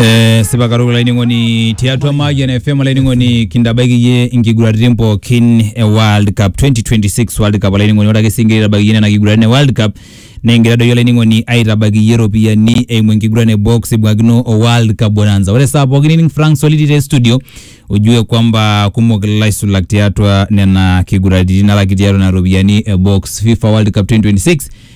Eh, sipa katukul olainining'oni tiatua Mayian FM olainining'oni kintabaiki iyie inkiguraritin pookin e World Cup 2026 World Cup olainining'oni ore ake sii ingira aitabaiki iyie nena kiguraritin e World Cup nikigira doi olainining'oni aitabaiki iyie iropiyiani eimu enkiguran e box ibung'akino o World Cup Bonanza ore saa pookin nining Frank Soliti te studio ujue kwamba kumok ilaisulak tiatua nena kiguraritin alaki tiatua nena ropiyiani e box FIFA World Cup 2026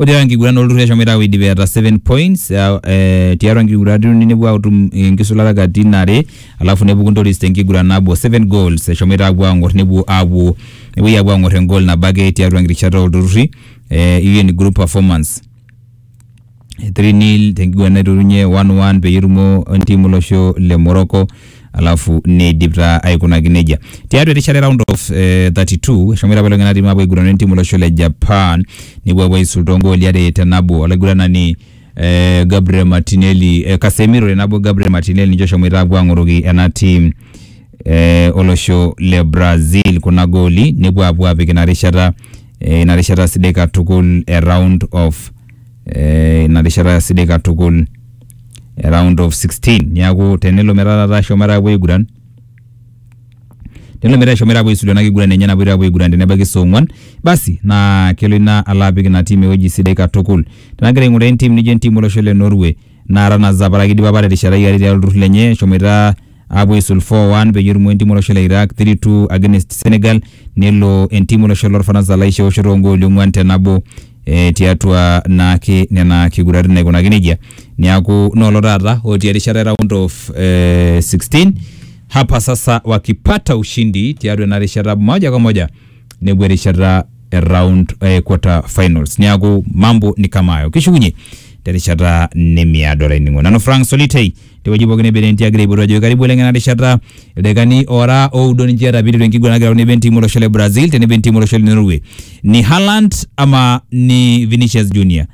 Ore tiatua enkiguran olturruri eshomoita aapuo aidip eeta seven points uh, eh, tiatua nkiguranat uni nepuo atum enkisulata katitin are alafu nepuku Ntoris tenkiguran nabo seven goals eshomoita apuo ang'or nepuo apuo nepuoi apuo ang'or engol nabo ake tiatua nkirishata olturruri eh, hiyo ni group performance 3 nil tenkiguran naiturunye 1-1 peyie etumo entiim olosho le Morocco alafu neidip taa aikunaki nejia. Tiatua erishata e round of eh, 32 eshomoita apa lelo tung'anak tiim apuo aigurana entiim olosho le Japan nepuo apuo aisul toongooli are te nabo olaiguranani eh, Gabriel Martinelli eh, Casemiro tenabo Gabriel Martinelli ninche oshomoita apuo ang'oroki ena tiim eh, olosho le Brazil kuna gooli nepuo apuo apik ina rishata eh, ina rishata sidai katukul e round of eh, ina rishata sidai katukul e round of 16 niaku tenelo metaa taata eshomoita apuo aiguran tenelo metaa eshomoita apuo aisulu ena kiguran enye napoito apuo aiguran tenebaiki saa ong'uan basi naa kelo ina alo apik ina tim ewueji sidai katukul tenagira aing'uraa entim nijo entim olosho le Norway naa tanazapara kidipa apa terishata iare tiatua olturrur lenye eshomoita apuo aisul 4-1 peyie etumo entim olosho le Iraq 3-2 against Senegal nelo entim olosho lorfaransa laisho eoshoto ongooli ong'uan te nabo eh, tiatua naake nena kiguratin naikunaki nejia niaku noolo taata otii erishata e round of eh, 16 hapa sasa wakipata ushindi tiatua ena rishata moja kwa moja nepuo erishata e round eh, quarter finals niaku mambo ni kama hayo kishukunye terishata nemiado olainingo nanu frank solitei tewueji pookin ebere entii agira aipotu ajo karibu oleng ena rishata ildakikani ora oudo ninche eeta piiteru enkiguran nagira tenebo entim olosho le brazil tenebo entim olosho le norway ni haland ama ni vinicius junior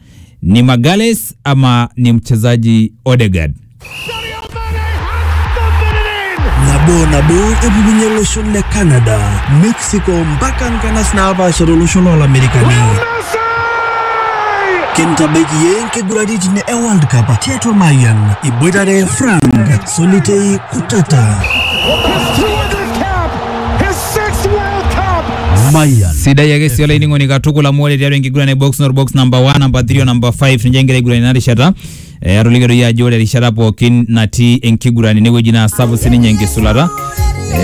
ni magales ama ni mchezaji odegard nabo nabo epukunye loshon le canada mexico mpaka nkanas naapaasha tolosho loolamerikani kintabaiki ye nkiguraritin e world cup tiatua mayian iboitare frank solitei kutata mayian sidai ake sii olainining'oni katukul amu ore tiatua enkiguran e box nor box namba 1 namba 3 o namba 5 ninche egira aiguran ina rishata Eh, atolikio doi ajo ore erishata pookin natii enkiguran enewueji naa sapuk sininye enkisulata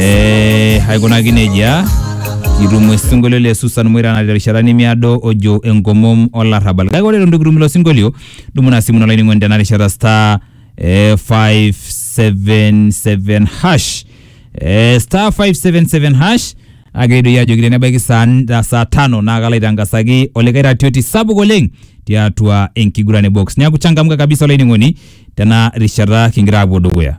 eh, aikunaki nejia kitum osinkolio le Susan Moira natii erishata nemiado ojo enkomom olarrabal kake ore eton itu kitum ilo sinkolio dumu ina simu ino olainining'oni tena rishata star eh, 577 hash eh, star 577 hash Kake doi ajoki tenebaiki saa n- saa tano naa kalo aitangasaki olikae ratioti sapuk oleng tiatua enkiguran e box. Neaku changamka kabisa olainining'oni tena rishata kingira aapuo dukuya.